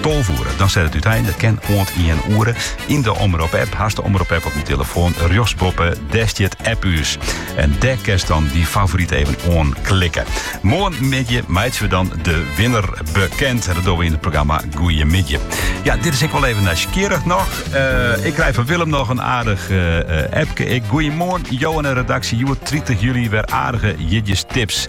Tolve oere, dan set it útein. Dat kin oant ien oere. Yn de Omrop app, hast de Omrop app op dyn telefoan, rjochtsboppe, dêr stiet app ús. En dêr kinst dan dyn favoryt even oanklikke. Moarnmiddei meitsje we dan de winner bekend. En dat dogge we yn it programma Goeiemiddei. Ja, dit is ik wol even nijsgjirrich noch. Eh, ik krij fan Willem noch in aardich uh, appke. Ik, goeiemoarn, Jo en de redaksje. Hjoed 30 july wer aardige jierdeistips.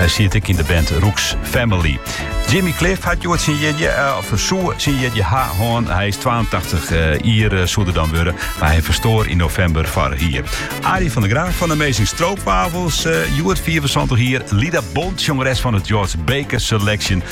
Hy siet ek yn de band Roek's Family. Jimmy Cliff hat hjoed syn jierdei, eh, of soe syn jierdei ha hân. Hy is 82 eh, jier eh, soe er dan wurde, mar hy ferstoar yn novimber foarich jier. Arie van der Graaf fan Amazing Stroopwafels, hjoed 74 jier. Lida Bond, sjongeres fan it George Baker Selection.